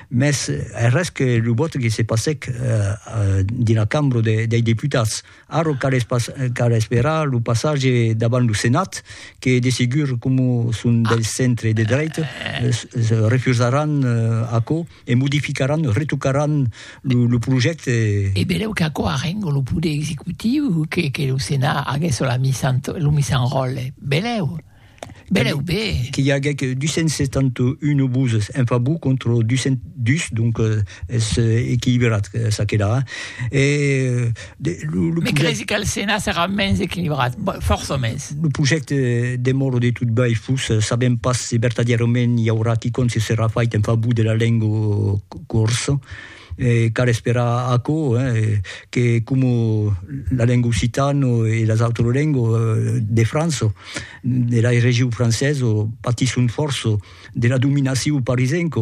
mès es res que lo vòte que se passèc dina cambra dei deputats. Ara cal esperar lo passatge davant lo Senat que de segur coma son del centre de dreita refusaràn aquò e modificaràn, retocaràn lo projècte. E benlèu qu'aquò arrenga lo poder executiu que lo Senat aguèsse lo misan ròtle, benlèu. Belèu be! Que i aguec 271 voses en favor contra 202, donc es equilibrat ça que la. E de lo, lo. Me cresi qu'al Senat serà mens equilibrat, fòrça mens. Lo projècte demòra de tot bèi fus, sabèm pas se vertadièrament i aurà quicòm se serà fait en favor de la lenga corsa. E cal esperar aquò, que coma la lenga occitana e las autras lengas de França, de la region francesa, patisson fòrça de la dominacion parisenca,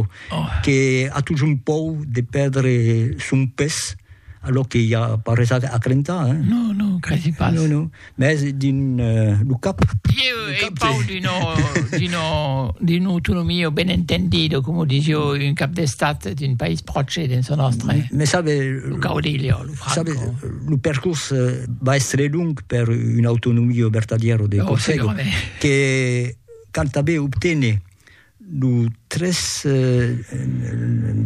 que a totjorn paur de pèrdre son pes, alò que i a pas res a crentar. Non, non, credi pas. Mès dins lo cap. Ieu ei pau d'una autonomia ben entendida, coma o disio un cap d'estat d'un país pròche dins lo nòstre. Mès sabe, lo caudillo, lo Franco. Sabe, lo percors va èstre long per una autonomia vertadièra de Còrsega, que canta ben obtene. Lo tres,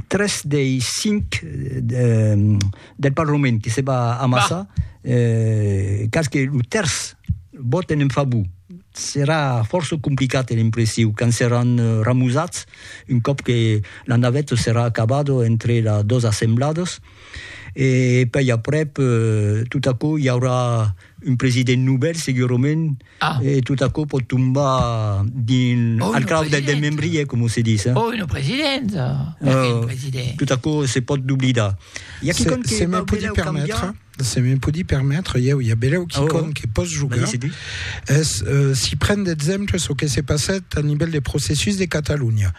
tres dei cinc del Parlament que se va amassar, cas que lo tèrç vòten en favor, serà fòrça complicat, è l'impressiu, quand seràn ramosats, un còp que la naveta serà acabada entre las dos assembladas, e pèi aprèp, tot aquò i aurà un president novèl segurament ah. e tot aquò pot tombar dins oh, al crau del, del membrier com se dis eh? oh, un president uh, president tot aquò se pot doblidar hi ha qui compte se me podi permettre se me podi permettre ieu hi ha beleu qui oh, oh. compte que pos jugar es uh, si pren d'exemple ce que se passat a nivell de processus de Catalunya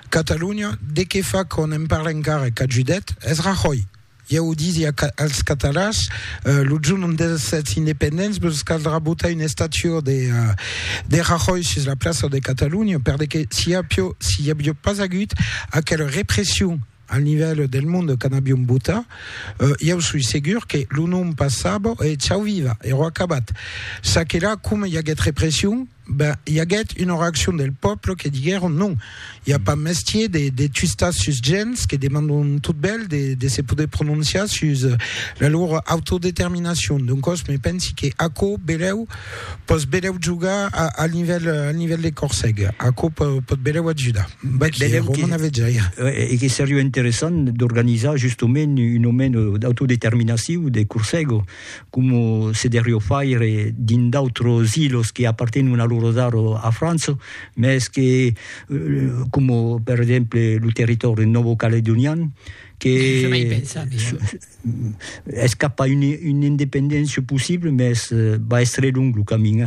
Catalunya de que fa qu'on en parle encara que Judet es Rajoy Ieu disi als catalans, lo jorn ont èssetz independents vos caldrà botar una estatua de Rajoy sus la plaça de Catalunya, per de que si i aviá pas agut aquela repression al nivèl del monde quand aviom botat, ieu soi segur que lo nom passava e chau viva, ero acabat. Ça que la, coma i aguèt repression, Ben, i aguèt una reaccion del pòble que diguèron, non, i a pas mestier de, de tuistar sus gents que demandon tot bèl de, de se poder prononciar sus la lor autodeterminacion. Doncòs, me pensi que aquò belèu pòs belèu jogar a, al nivèl, al nivèl de Corseg. Aquò pò, pòt belèu ajudar. Vaquí, Belèu que- Romana Vejaia. E, e que seriá interessant d'organizar justament una mena d'autodeterminacion de Corseg, Coma se derrió faire dins d'autros ilos que apartenon a loro dar a França, mès que, coma per exemple lo territòri nòvo-caledonian, que es cap a una independéncia possible, mès va èstre long lo camin.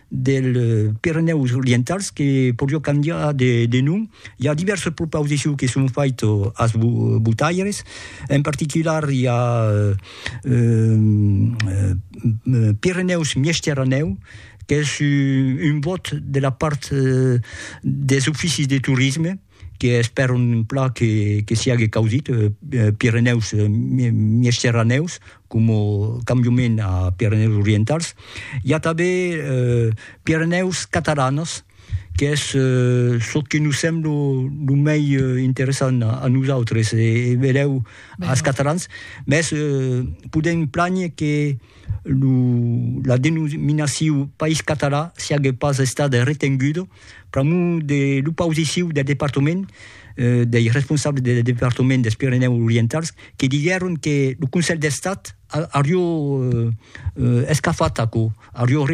dels Pirenèus Orientals que podió cambiar de nom. I a divèrses propausiciu que son fait as botaires, en particular i a Pirenèus Miesteranèu qu'es un bòt de la part des oficis de torisme, que espèr un plan que que siague causit Pirenèus Miesteranèus coma cambiament a Pirenèus Orientals i a tanben Pirenèus Catalanas qu'es çò que nos sembla lo mei interessant a nosautres e benlèu als Catalans mès podèm plànher que lo la denominacion país catalan siague pas estada retenguda Pr'amor de l'opausiciu del departament, dei responsables del departament dels Pirenèus Orientals, que diguèron que lo Conselh d'Estat aurió escafat aquò, aurió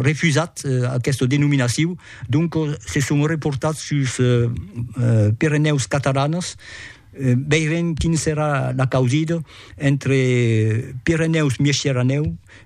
refusat aquesta denominaciu, doncos se son reportats suls Pirenèus Catalanas, veirem quin serà la causida entre Pirenèus-Miesciranèu,